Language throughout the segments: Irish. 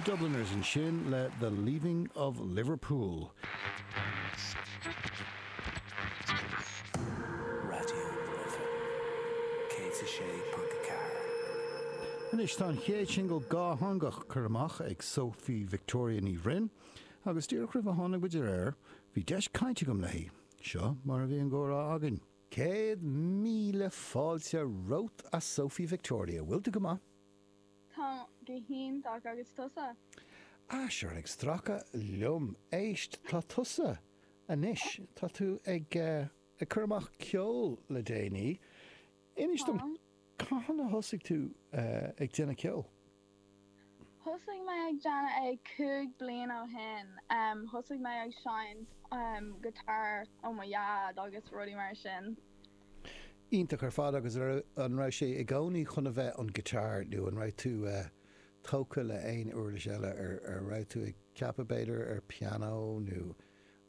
Dubliners ansin le The Leaving of Liverpool. Radio na Life 106.4. Anois tá an chéad singil dhátheangach curtha amach ag Sophie Victoria Ní Bhroin agus díreach roimh ar tháinig muid ar aer bhí deis cainte agam léi. Seo mar a bhí an gcomhrá againn. Céad míle fáilte romhat a Sophie Victoria. Bhfuil tú go maith? Táim go hiontach agus tusa? Ah, sure, ag stracadh liom. Éist, tá tusa. anois, tá tú ag, ag cur amach ceol le déanaí. Inis dom, Táim. cathain a thosaigh tú ag déanamh ceoil? Thosaigh mé ag déanamh é cúig bliain ó shin. Thosaigh mé ag seinnt guitar ó mo dhaid agus rudaí mar sin. Iontach ar fad agus an raibh sé i gcónaí chun a bheith an guitar nó an raibh tú tógtha le aon uirlis eile? An raibh tú ag ceapadh b'fhéidir ar pianó nó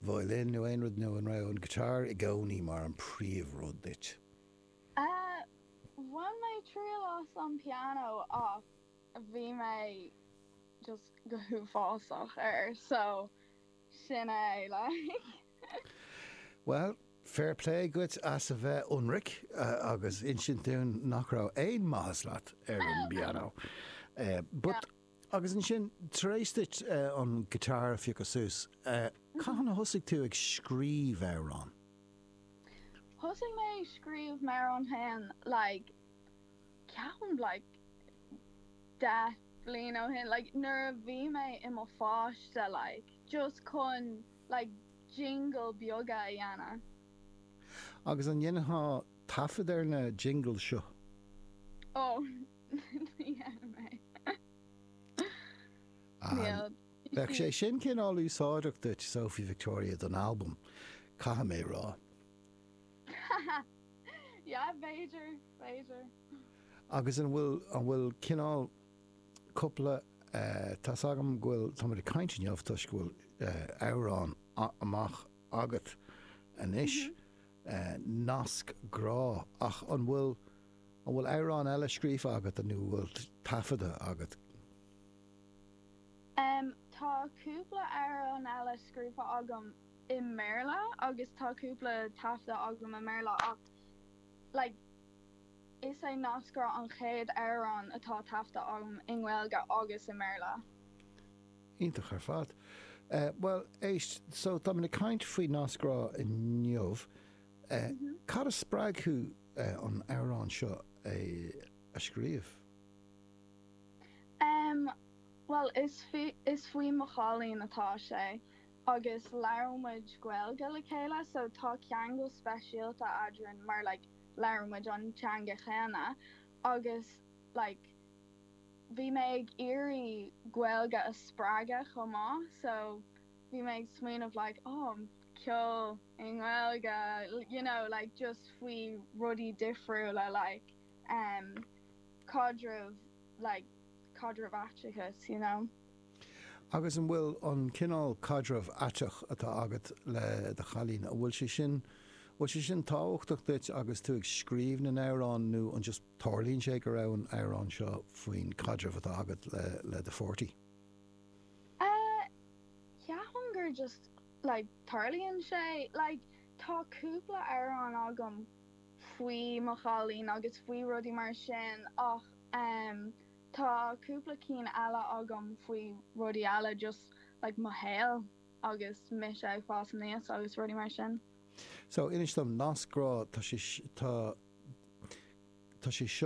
violin nó aon rud nó an raibh an guitar i gcónaí mar an príomhrud duit? Bhain mé triail as an piano ach bhí mé just go huafásach air so sin é like. Bhuel, fair play dhuit as a bheith ionraic agus insint dúinn nach raibh aon mhaitheas leat ar an bpianó but. Agus ansin, tar éis duit an guitar a phiocadh suas, cathain a thosaigh tú ag scríobh amhrán? Thosaigh mé ag scríobh amhrán féin like ceapaim like deich bliain ó shin, like nuair a bhí mé i mo pháiste like, just chun like jingle beaga a dhéanamh. Agus an ndéanfá taifead ar na jingles seo? Oh. Ní dhéanfaidh mé. Bheadh sé sin cineál úsáideach duit, Sophie Victoria, don albam, caithfidh mé a rá. Yeah, b'fhéidir, b'fhéidir. Agus an bhfuil, an bhfuil cineál cúpla, tá's agam go bhfuil, táimid ag caint inniu toisc go bhfuil amhrán amach agat anois, Nasc Grá, ach an bhfuil, An bhfuil amhrán eile scríofa agat nó an bhfuil taifeadta agat? Um, tá cúpla amhrán eile scríofa agam i mBéarla agus tá cúpla taifeadta agam i mBéarla ach, like, is é Nasc Grá an chéad amhrán atá taifeadta agam i nGaeilge agus i mBéarla. Iontach ar fad. Eh, bhuel, éist, so, táimid ag caint faoi Nasc Grá inniu. Cad a spreag thú an amhrán seo a scríobh? Bhuel, is faoi mo chailín atá sé agus labhrann muid Gaeilge le chéile so tá ceangal speisialta eadrainn mar like labhrann muid an teanga chéanna agus like bhí mé ag iarraidh Gaeilge a spreagadh chomh maith so bhí mé ag smaoineamh like oh ceol i nGaeilge you know like just faoi rudaí difriúla like em caidreamh like caidreamh aiteachas you know. Agus an bhfuil an cineál caidreamh aiteach atá agat le do chailín an bhfuil sé sin an bhfuil sé sin tábhachtach duit agus tú ag scríobh na n-amhrán nó an just tarlaíonn sé go raibh an amhrán seo faoin caidreamh atá agat le le do pháirtí? Eh ceapaim gur just. like, tarlaíonn sé. Like, tá cúpla amhrán agam faoi mo chailín agus faoi rudaí mar sin ach em tá cúpla cinn eile agam faoi rudaí eile, just like mo shaol agus mise ag fás aníos agus rudaí mar sin. So inis dom, nasc grá, tá sé, tá, tá sé seo.